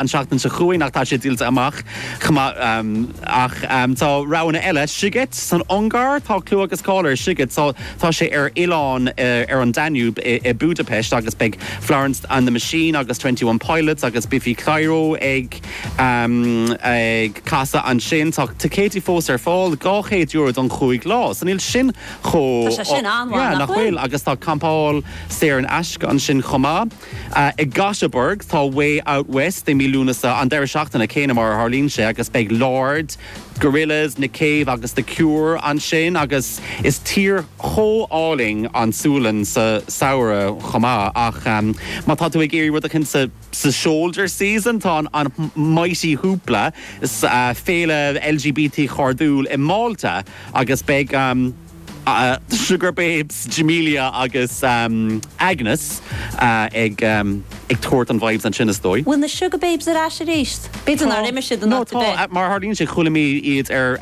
an tseachtain seo chugainn ach tá sé díolta amach chomh maith. Ach tá roghanna eile, Sziget san Ungáir, tá clú agus cáil ar Sziget, tá sé ar oileán ar an Danube i Budapest agus beidh Florence and the Machine agus Twenty One Pilots agus Biffy Clyro ag casadh ansin. Tá ticéidí fós ar fáil, €200 don chúig lá, so níl sin chomh. Tá sé sin an-mhaith, nach bhfuil? Yeah, nach bhfuil? Agus tá campáil saor in aisce ansin chomh maith. I nGothenburg tá Way Out West i mí Lúnasa, an deireadh seachtaine céanna mar a tharlaíonn sé, agus beidh Lorde, Gorillaz, Nick Cave agus The Cure ansin, agus is tír chomh álainn an tSualainn sa samhradh chomh maith. Ach má tá tú ag iarraidh rud éigin sa shoulder season, tá an Mighty Hoopla, féile LGBT chairdiúil i Málta, agus beidh. Sugababes, Jamelia agus Agnes ag tabhairt an vibes ansin is dóigh. Bhfuil na Sugababes ar ais aríst? B'fhéidir nár imigh siad an No, tá, mar a tharlaíonn sé chuala mé iad ar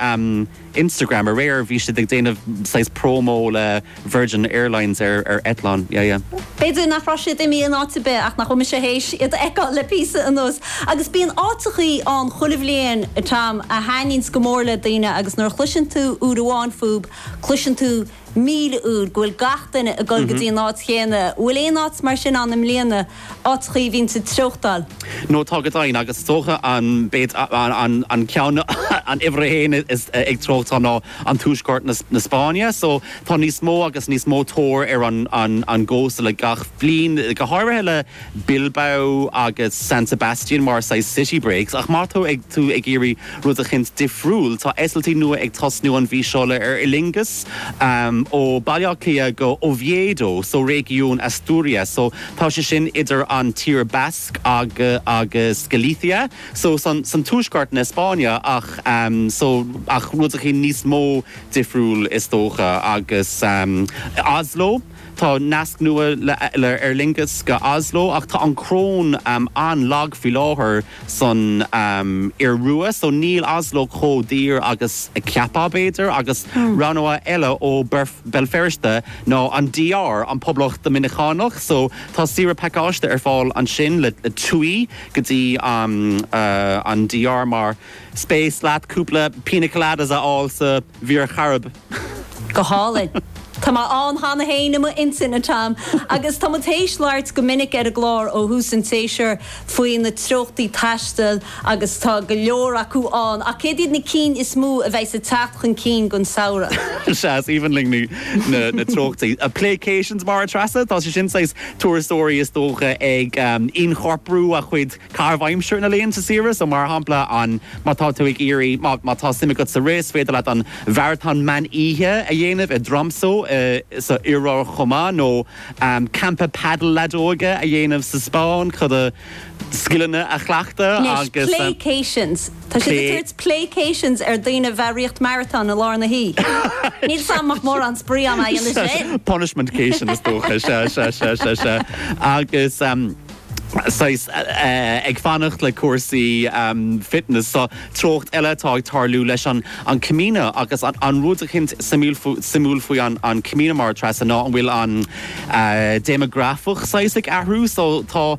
Instagram aréir, bhí siad ag déanamh saghas promo le Virgin Airlines ar eitleán, yeah yeah. B'fhéidir nach raibh siad imigh in áit ar bith ach nach bhfuil mise théis iad a fheiceáil le píosa anuas. Agus bíonn áiteachaí ann chuile bhliain, a Tom, a thaitníonns go mór le daoine agus nuair a chloiseann tú uair amháin fúb, cloiseann tú míle uair go bhfuil gach duine ag dul go dtí an áit chéanna. An bhfuil aon áit mar sin ann i mbliana, áiteachaí a bhíonns ag treochtáil? Nó tá go deimhin, agus is dócha an ceann, an uimhir a haon ag treochtáil ná. an tuaisceart na Spáinne so tá níos mó agus níos mó tóir ar an gcósta le gach bliain, go háirithe le Bilbao agus San Sebastian mar saghas city breaks ach má tá tú ag iarraidh rud eicint difriúil tá eitiltí nua ag tosnú an mhí seo le Aer Lingus ó Baile Átha Cliath go Oviedo so réigiún Asturias so tá sé sin idir an tír Bhascach agus Galicia. so san san tuaisceart na Spáinne ach so ach rud eicín níos mó difriúil is dócha agus i Oslo tá nasc nua le le Aer Lingus go Oslo ach tá an chróin an-lag faoi láthair san Iorua so níl Oslo chomh daor agus a cheapfá b'fhéidir agus rogha nua eile ó Berf Béal Feirste ná an DR, an Poblacht Doiminiceánach so tá saoire pacáiste ar fáil ansin le le TUI go dtí an DR más spéis leat cúpla pina coladas a fháil sa Mhuir Chairib. Go hálainn. Tá mé ann cheana féin i m'intinn, a Tom, agus tá muid théis labhairt go minic ar an gclár ó thús an tséasúir faoi na treochtaí taistil agus tá go leor acu ann, ach céard iad na cinn is mó a bheidheas ag teacht chun cinn don samhradh? Sea, is aoibhinn linn na treochtaí. Playcations, mar a Threasa, tá sé sin saghas. turasóirí is dócha ag ionchorprú a chuid caitheamh aimsire ina laethanta saoire. So, mar shampla, an, má tá tú ag iarraidh, má, má tá suim agat sa rith, is féidir leat an maratón mean oíche a dhéanamh i dTromso i, san Iorua chomh maith, nó campa paddle leadóige a dhéanamh sa Spáinn chun do scileanna a chleachtadh Anois, agus. playcations! Tá siad ag tabhairt playcations ar daoine a bheith ag rith marathon i lár na hoíche. Níl 'fhios a'm an bhfuil mórán spraoi ann a dhéanamh sin! Punishmentcation is dócha, sea, sea, sea, sea, sea. Agus em. saghas eh ag fanacht le cúrsaí em fitness so treocht eile atá ag tarlú leis an an Camino agus an an rud eicint suimúil suimiúil faoi an an Camino mar a Treasa ná go bhfuil an eh déimeagrafach saghas ag athrú so tá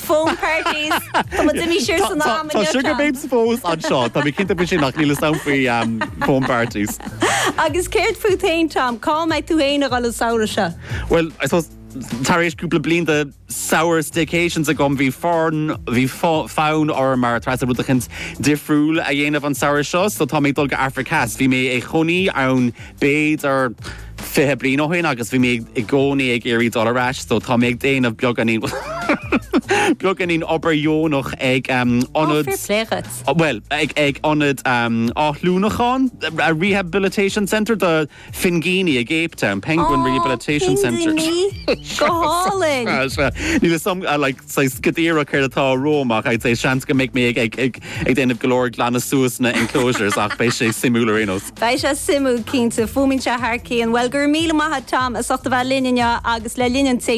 Foam parties! Tá muid amuigh siar san am inniu, Tá Seán. sugar babes fós anseo, tá mé cinnte faoi sin ach níl 'fhios a'm faoi na foam parties. Agus céard fút féin, Tom? Cá mbeidh tú féin a dhul an samhradh seo? Bhuel, I suppose tar éis cúpla bliain de samhradh staycations agam bhí forn bhí fo- fonn orm a Treasa rud eicint difriúil a dhéanamh an samhradh seo, so tá mé ag dul go Afraic Theas. Bhí mé i mo chónaí ann b'fhéidir, fiche bliain ó shoin agus bhí mé i gcónaí ag iarraidh dul ar ais, so tá mé ag déanamh beagáinín beagáinín obair dheonach ag Ionad... Ó, fair play dhuit. bhuel, ag ag Ionad Athshlánúcháin, a rehabilitation centre do phingíní i gCape Town, penguin rehabilitation centre. Ó, pingíní! Go hálainn! Tá sé, níl 'fhios a'm, like, saghas go díreach céard atá romham ach I'd say seans go mbeidh mé ag ag ag ag déanamh go leor glanadh suas na enclosures ach beidh sé suimiúil ar aon nós. Beidh sé suimiúil cinnte. Fuaimíonn sé thar cionn. Bhuel, go raibh míle maith a't Tom as ucht a bheith linn inniu agus le linn an tséisiúin.